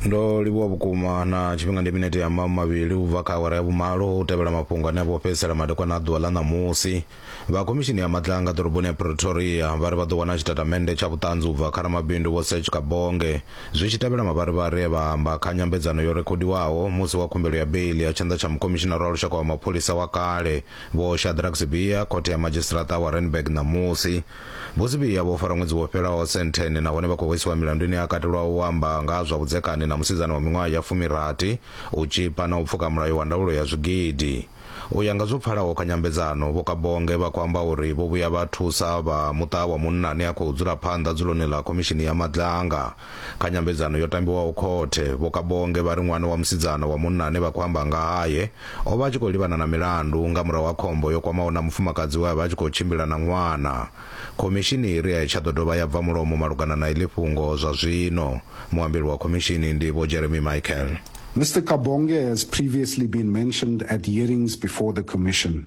ndo livhuwa vhukuma na tshifhinga ndi minete ya mamu mavhili u bva kha awara ya vhumalo u tevhela mafhungo ane a vho fhedzisela madekwana a ḓuvha ḽa ṋamusi vha khomishini ya matlanga ḓoroboni ya pretoria vha ri vha ḓo wana tshitatamennde tsha vhuṱanzi u bva kha ramabindu vho sech kabonge zwi tshi tevhela mavharivhari e vha amba kha nyambedzano yo rekhodiwaho musi wa khumbelo ya beili ya tshanḓa tsha mukhomishinara wa lushaka wa mapholisa wa kale vho shadrack sibia khothe ya madzhisiṱiraṱa wa renberg ṋamusi Buzibee yavho u fara ṅwedzi wo fhelaho sentheni nahone vha khou hwesiwa milandu ine ya katelwa u amba nga ha zwa vhudzekani na musidzana wa miṅwaha ya fumirathi, u tzhipa na u pfuka mulayo wa ndaulo ya zwigidi. U ya nga zwo pfalaho kha nyambedzano, Vho Kabonge vha khou amba uri vho vhuya vha thusa vha muṱa wa munna ane a khou dzula phanḓa dzuloni ḽa Khomishini ya Madlanga. Kha nyambedzano yo tambiwaho khothe, Vho Kabonge vha ri ṅwana wa musidzana wa munna ane vha khou amba nga hae o vha a tshi khou livhana na milandu nga murahu ha khombo yo kwamaho na mufumakadzi we a vha a tshi khou tshimbila na ṅwana. Khomishini i ri a i tsha ḓo dovha ya bva mulomo malugana na iḽi fhungo zwa zwino. Muambeli wa khomishini ndi Vho Jeremy Michael. Mister Kabonge has previously been mentioned at hearings before the Commission.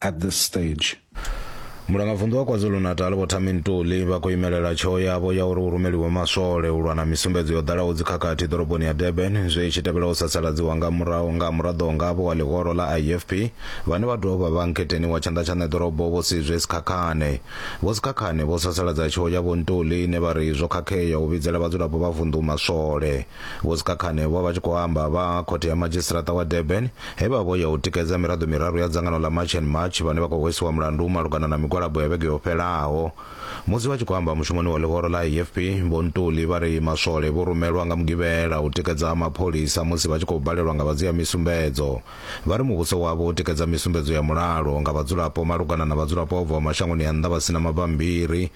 at this stage. mulangavunḓu wa kwazulu-natal vho thami ntuli vha khou imelela tsheo yavho ya uri hu rumeliwe maswole u lwa na misumbedzo yo ḓalaho dzikhakhathi ḓoroboni ya durban zwe tshi tevhela u sasaladziwa nga murahu nga muraḓo ngavho wa ḽihoro ḽa ifp vhane vha dovha vha nkheteni wa tshanḓa tsha ṋeḓorobo vho sizwe sikhakhane vho sikhakhane vho sasaladza tsheo ya vho ntuli ine vha ri zwo khakhea u vhidzela vhadzulapo vha vunḓu maswole Vho Sikhakhane vho vha tshi khou amba vha khothe ya madzhisiṱiraṱa wa Durban he vha vho ya u tikedza miraḓo miraru ya dzangano ḽa March and March vhane vha khou hwesiwa mulandu malugana na migwalabo ya vhege yo fhelaho. Musi vha tshi khou amba mushumoni wa ḽihoro ḽa AFP, Vho Ntuli vha ri maswole vho rumelwa nga Mugivhela u tikedza mapholisa musi vha tshi khou balelwa nga vha dzhia misumbedzo. Vha ri muvhuso wavho u tikedza misumbedzo ya mulalo nga vhadzulapo malugana na vhadzulapo vha bvaho mashangoni a nnḓa vha si na mabammbiri,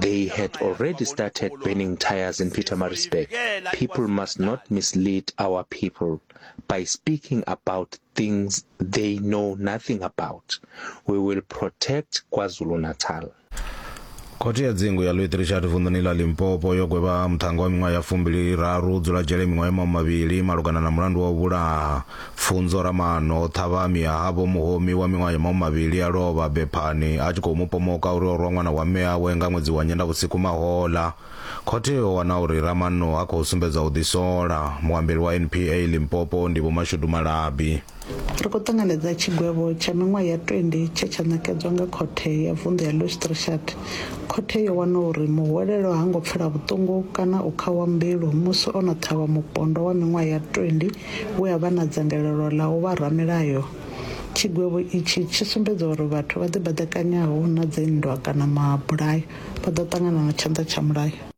They had already started burning tires in Pietermaritzburg. People must not mislead our people by speaking about things they know nothing about. We will protect KwaZulu-Natal. khothe ya dzingu ya louis richard vunḓuni ḽa limpopo yo gwevha muṱhannga wa miṅwaha ya fumbili raru dzula dzhele miṅwaha ya maṅwe mavhili malugana na mulandu wa u vhulaha Pfunzo Ramaano o ṱhavha mme a ha Vho Muhomi wa miṅwaha ya mahumimavhili a lovha bephani a tshi khou mu pomoka uri o rwa ṅwana wa mme awe nga ṅwedzi wa Nyendavhusiku mahoḽa. Khothe yo wana uri Ramaano ha khou sumbedza u ḓisola. Muambeli wa NPA Limpopo ndi Vho Mashudu Malabi. Ri khou ṱanganedza tshigwevho tsha miṅwaha ya 20 tshe tsha ṋekedzwa nga Khothe ya Vunḓu ya Loosdrichardt. Khothe yo wana uri muhwelelwa ha ngo pfela vhuṱungu kana u khawa mbilu musi o no ṱhavha mupondwa wa miṅwaha ya 20 we a vha na dzangalelo ḽa u vha ramilayo. Tshigwevho itshi tshi sumbedza uri vhathu vha ḓibaḓekanyaho na dzinndwa kana mabulayo vha ḓo ṱangana na tshanḓa tsha mulayo.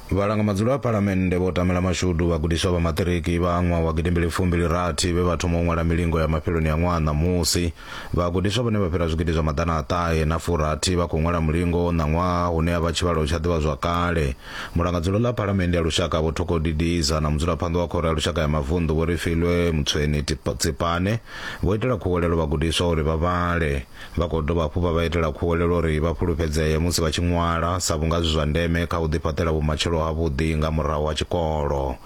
Vhalanga madzulo a Phalamennde vho tamela mashudu vhagudiswa vha maṱiriki vha ṅwaha wa gidimbili fumbili rathi vhe vha thoma u ṅwala milingo ya mafheloni a ṅwaha ṋamusi. Vhagudiswa vhane vha fhira zwigidi zwa maḓana a ṱahe na furathi vha khou ṅwala mulingo ṋaṅwaha hune a vha tshivhalo tsha ḓivhazwakale. Mulangadzulo ḽa Phalamennde ya Lushaka Vho Thoko Didiza na mudzulaphanḓa wa Khoro ya Lushaka ya Mavunḓu Vho Refilwe Mtsweni Tsipane vho itela khuwelelo vhagudiswa uri vha vhale. Vha khou dovha hafhu vha vha itela khuwelelo uri vha fhulufhedzee musi vha tshi ṅwala sa vhunga zwi zwa ndeme kha u ḓifhaṱela vhumatshelo havhuḓi nga murahu ha tshikolo.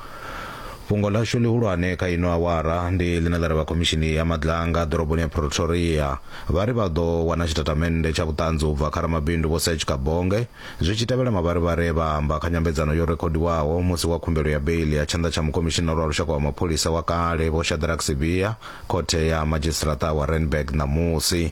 Fhungo ḽashu ḽihulwane kha ino awara ndi ḽine ḽa ri vha Khomishini ya Madlanga ḓoroboni ya Pretoria vha ri vha ḓo wana tshitatamennde tsha vhuṱanzi u bva kha ramabindu Vho Serge Kabonge, Zwi tshi tevhela, mavharivhari e vha a amba kha nyambedzano yo rekhodiwaho musi wa khumbelo ya beiḽi ya tshanḓa tsha Mukomishinara wa Lushaka wa Mapholisa wa kale, Vho Shadrack Sibiya, Khothe ya Madzhisiṱaraṱa wa Randburg ṋamusi.